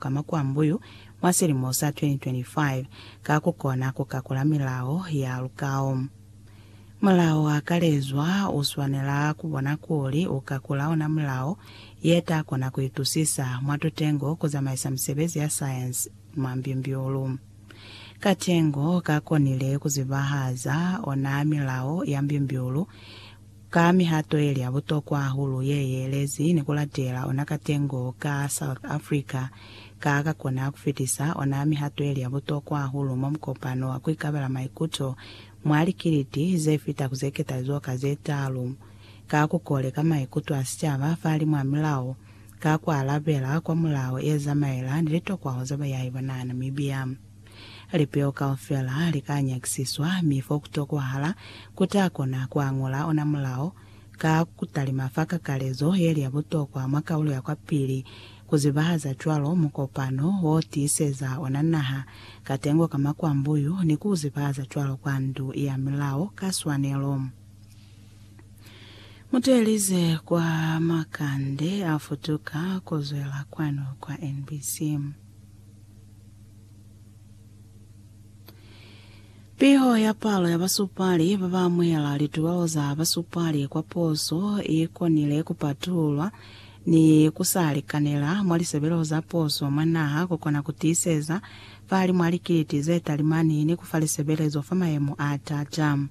ka makwambuyu mwa silimo sa 2025 ka ku kona ku kakula milao ya lukao. Mulao wa kalezwa u swanela ku bona kuli u kakula ona mulao ye ta kona ku itusisa mwa tutengo ku zamaisa misebezi ya sayensi mwa mbimbiulu. Katengo ka konile ku zibahaza ona milao ya mbimbiulu, Ka mihato yeli ya butokwa hahulu ye yeelezi ni kulatela ona katengo ka South Africa, ka ka kona kufitisa ona mihato yeli ya butokwa hahulu mwa mukopano wa kuikabela maikuto mwa likiliti zefita ku zeketalizo ka zetaalu, ka kukoleka maikuto a sicaba fahalimu a milao, ka kualabela kwa mulao yezamaela ni litokwaho za bayahi ba naha Namibia. Lipeo kaufela li ka nyakisiswa, mi fo ku tokwahala ku ta kona ku añola ona mulao. Ka ku talima fa kakalezo ye li ya butokwa mwa kaulo ya kwapili, ku zibahaza cwalo mukopano wo tiiseza ona naha katengo ka makwambuyu ni ku u zibahaza cwalo kwa Ndu ya Milao ka swanelo. Mu teelize kwa makande a futuka ku zwela kwanu kwa NBC. Piho ya palo ya basupali ba ba amuhela litubao za basupali kwa poso i konile ku patululwa ni ku sa likanela mwa lisebeleho za poso mwa naha ku kona ku tiiseza fahalimu a likiliti ze talimani ni ku fa lisebelezo fa mayemo a t'ata.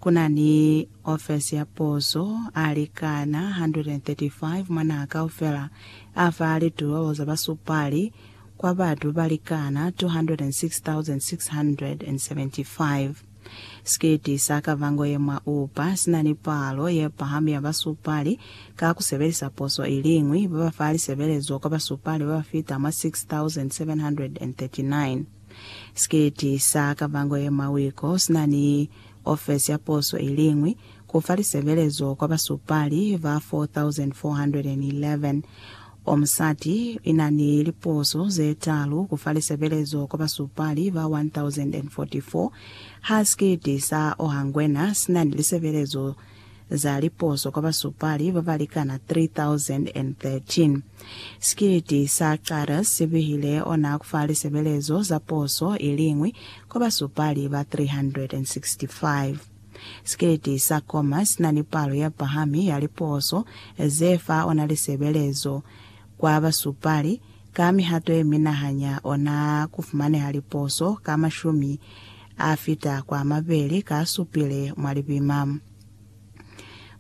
Ku na ni ofesi ya poso a likana 135 mwa naha kaufela a fa litubao za basupali kwa batu ba likana 206,675. Sikiti sa kavango ye mwa Upa si na ni palo ye pahami ya basupali ka ku sebelisa poso i liñwi, ba ba fa lisebelezo kwa basupali ba ba fita mwa 6,739. Sikiti sa kavango ye mwa Wiko si na ni ofesi ya poso i liñwi, ku fa lisebelezo kwa basupali ba 4,411. O musati ina ni liposo ze talu kufa lisebelezo kwa basupali ba 1044. Ha sikiti sa Ohangwena sina ni lisebelezo za liposo kwa basupali babalikana 3013. Sikiti sa Carus si bihile ona kufa lisebelezo za poso iliñwi kwa basupali ba 365. Sikeleti sa koma si na ni palo ya pahami ya liposo ze fa ona lisebelezo kwa basupali. Ka mihato ye mina ha nya ona ku fumaneha liposo ka mashumi a fita kwa mabeli ka supile mwa lipima.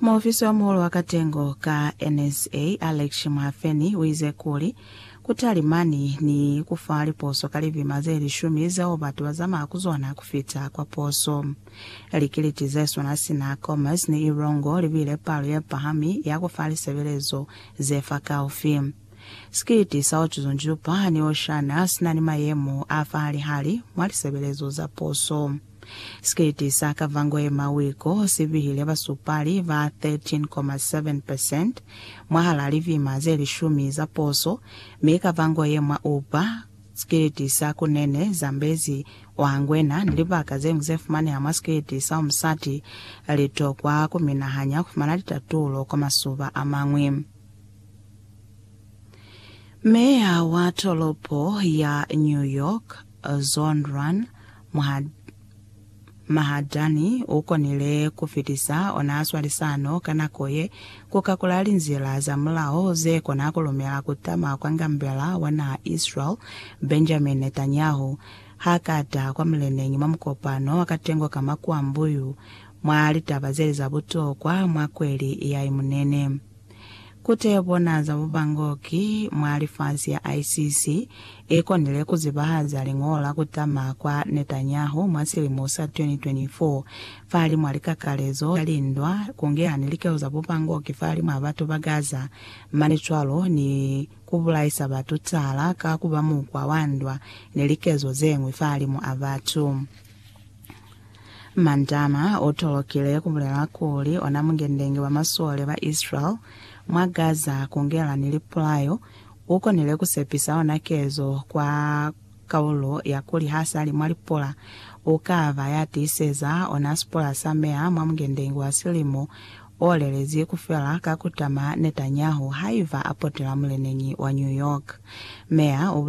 Muofisi wa muhulu wa katengo ka NSA, Alex Mhafeni, u ize kuli, Ku talimani ni ku fa liposo ka lipima ze lishumi zeo batu ba zamaya ku zona ku fita kwa poso. Likeliti ze swana sina Commerce ni Ilongo li bile palo ye pahami ya ku fa lisebelezo ze fakaufi. Sikiliti sa Otuzunjupa ni Oshana si na ni mayemo a fahalihali mwa lisebelezo za puso. Sikiliti sa Kavango ye Mawiko si bihile basupali ba 13.7 percent mwahal'a livima ze lishumi za puso, mi Kavango ye mwa Upa, sikiliti sa Kunene, Zambezi, wa ngwena ni libaka zeñwi ze fumaneha mwa sikwiti sa umusati, li tokwa ku minahanya ku fumana litatulo kwa masuba a mañwi. Meya wa tolopo ya New York, Zhon Rohn Mahadani, u konile ku fitisa ona swalisano ka nako ye, ku kakula linzila za mulao ze kona ku lumela ku tama kwa ngambela wa naha Israel, Benjamin Netanyahu, Ha ka taha kwa muleneñi mwa mukopano wa katengo ka makuambuyu mwa litaba zeli za butokwa mwa kweli ya Imunene, ku tebona za bubangoki mwa lifasi ya ICC i konile ku zibahaza liñolo la ku tama kwa Netanyahu mwa silimo sa 2024 fahalimw'a likakalezo za lindwa, ku ngeha ni likelo za bubangoki fahalimw'a batu ba Gaza, mane cwalo ni. ku bulaisa batu cala ka ku ba mukwa wa ndwa ni likezo ze ñwi fahalimu a batu. Mandama u tolokile ku bulela kuli ona mungendenge wa masole ba Israel mwa Gaza ku ngela ni lipulayo, u konile ku sepisa ona kezo kwa Kaulo ya kuli ha sa li mwa lipola u ka ba ya tiiseza ona sipola sa meya mwa Mungendenge wa Silimu o lelezi ku fela ka ku tama Netanyahu haiba a potela muleneñi wa New York. Meya u bulezi